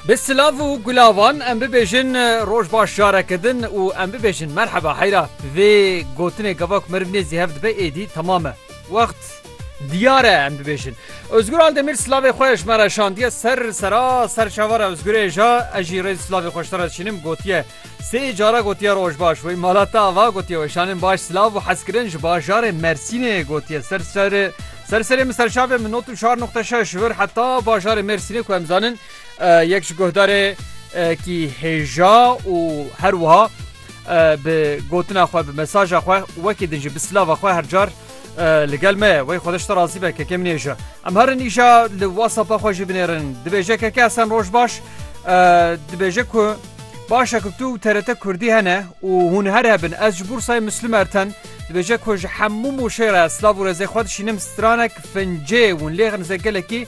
Bi silav û gulavan em bibêjin roj baş jareke din û em bibêjin merheba heyra. Vê gotinê gava ku meriv nêzî hev dibe êdî temam e. Wext diyar e em bibêjin. Ozgur Aldemîr silavê xwe ji me re şandiye ser sera serçavara Ozgurê ja ez jî rêz silavê xwe ji te re dişînim gotiye, Sê cara gotiye rojbaş wey mala te ava gotiye weşanên baş silav û hezkirin ji bajarê Mersînê gotiye ser ser ser serê min serçavê min not û çar noqte şeş vir heta bajarê Mersînê ku em zanin yek ji guhdarê kî hêja û her wiha bi gotina xwe bi mesaja xwe wekî din jî bi silava xwe her car Li gel me wey xwedeş te razî be kekê min ê ji em herin îşa li WhatsAppa xwe jî binêrin dibêje keke esen roj baş dibêje ku başa ku tu TRT Kurdî hene û hûn her hebin ez ji Bursayê Müslüm Erten dibêje ku ji hemû mûşê re silav û rêzê xwe dişînim stranek fincê hûn lêxin zê gelekî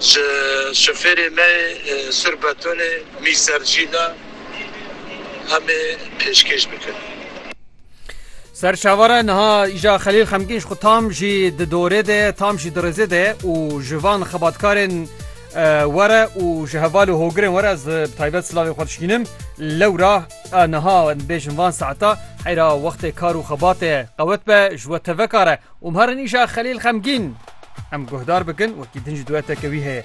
Ji şofêrê me yê Sur Betonê Mîser Cîla em ê pêşkêş bikin. Ser çavare niha îja Xelîl xemgîn ji xwe tam jî di dorê de ye, tam jî di rêzê de ye û ji van xebatkarên were û ji heval û hogirên were ez bi taybet silavê xwe dişkînim. Lewra niha em dibêjin van saeta heyra wextê kar û xebatê ye qewet be ji we tevekar e. Û ma re nîşa Xelîl xemgîn. Em guhdar bikin wekî din jî dueteke wî heye.